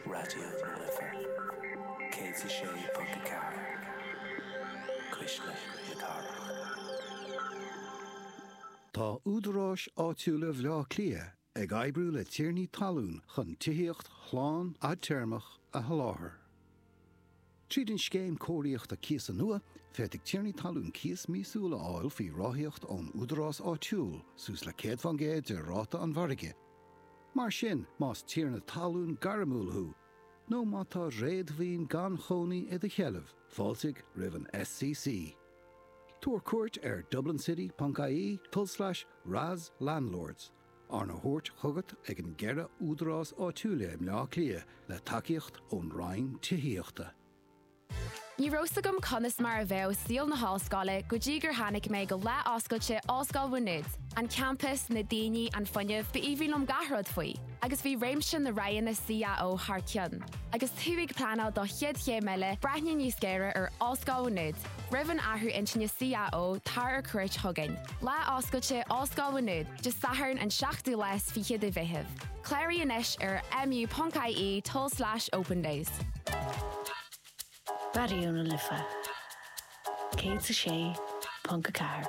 Raidió na Life 106.4, Cuisle na Cathrach. Tá Údaráis Áitiúla Bhaile Átha Cliath ag oibriú le tiarnaí talún chun tithíocht shlán fhadtéarmach a sholáthar. Tríd an Scéim Cóiríochta Cíosa nua, féadfaidh tiarnaí talún cíos míosúil a fháil faoi ráthaíocht ón údarás áitiúil, suas le 100 fán gcéad de ráta an mhargaidh. Mar sin, más tiarna talún gairmiúil thú, nó má tá réadmhaoin gan chónaí i do sheilbh, fáiltigh roimh an SCC. Tabhair cuairt ar dublincity.ie, tulslais, RAS Landlords. Arna thabhairt chugat ag na ceithre údarás áitiúil i mBleá Cliath le tacaíocht ón Roinn Tithíochta. Ní raibh 's agam conas mar a bheadh saol na hOllscoile go dtí gur tháinig mé go Lá Oscailte Ollscoil Mhá Nuad. An campas, na daoine, an fuinneamh, b'aoibhinn liom gach rud faoi. Agus bhí réimse na roghanna CAO thar cionn. Agus tú ag pleanáil do chéad chéim eile, breathnaigh níos géire ar Ollscoil Mhá Nuad. Roimh an athrú intinne CAO tar ar cuairt chugainn. Lá oscailte Ollscoil Mhá Nuad Dé Sathairn an 7ú lá is fiche de Mheitheamh. Cláraigh anois ar mu.ie tulslais opendays. Raidió na Life 106.4.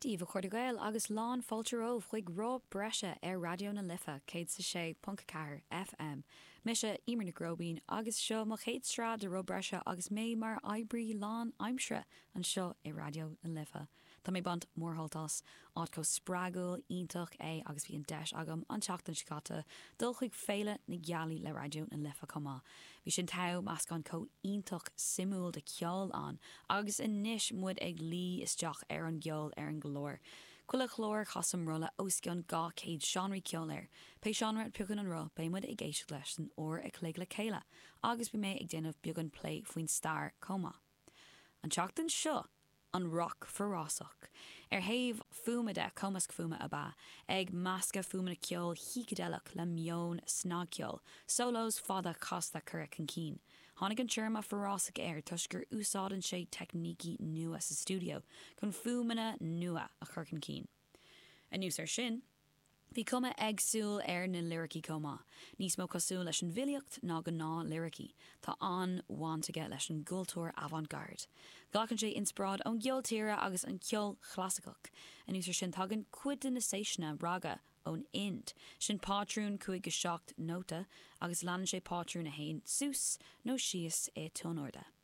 Dia dhaoibh a chairde Gael agus lán fáilte romhaibh chuig Roth Breise ar Raidió na Life 106.4 FM. Mise Emer Nic Róibín agus seo mo chéad sraith de Roth Breise agus mé mar oibrí lán aimsire anseo i Raidió na Life. Tá mé baint mórshult as. Áit chomh spreagúil iontach é agus bhí an deis agam an tseachtain seo caite dul chuig Féile na Gealaí le Raidió na Life chomh maith. Bhí sin togha, meascán comh iontach suimiúil de cheol ann agus anois muid ag luí isteach ar an gceol ar an gclár. Chuile chlár casaim rotha os cionn 200 seánra ceoil air. Pé seánra a piocann an roth beidh muid ag éisteacht leis san uair a chloig le chéile agus beidh mé ag déanamh beagán plé faoin stair comh maith an tseachtain seo an roc forásach ó thaobh fuaime de, cumasc fuaime ab ea é ag meascadh fuaimeanna ceoil shícideileach le meon snagcheoil, solos fada casta curtha chun cinn. Tháinig an téarma forásach air toisc gur úsáideann sé teicnící nua sa stiúideo chun fuaimeanna nua a chur chun cinn. Anuas ar sin, bhí cuma éagsúil ar na liricí comh maith, níos mó cosúil leis an bhfilíocht ná gnáth liricí. Tá an-bhaint aige leis an gcultúr avant garde. Glacann sé inspioráid ón gceol tíre agus an ceol chlasaiceach. Anuas ar sin, tagann cuid de na seiseanna, raga, ón India. Sin pátrún 5 go 7 nóta agus leanann sé pátrún amháin suas nó síos i tuinairde.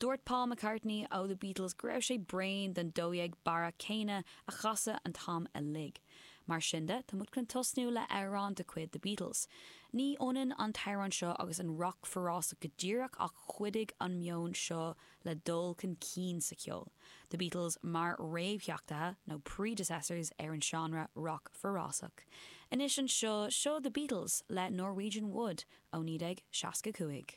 Dúirt Paul McCartney ó The Beatles go raibh sé bréan den dó dhéag barra céanna a chasadh an t-am uilig. Mar sin de, tá muid chun tosnú le amhrán de chuid The Beatles. Ní ionann an t-amhrán seo agus an roc forásach go díreach ach chuidigh an meon seo le dul chun cinn sa cheol, The Beatles mar réamhtheachtaithe, nó predecessors, ar an seánra roc forásach. Anois anseo, seo The Beatles le Norwegian Wood ó 1965.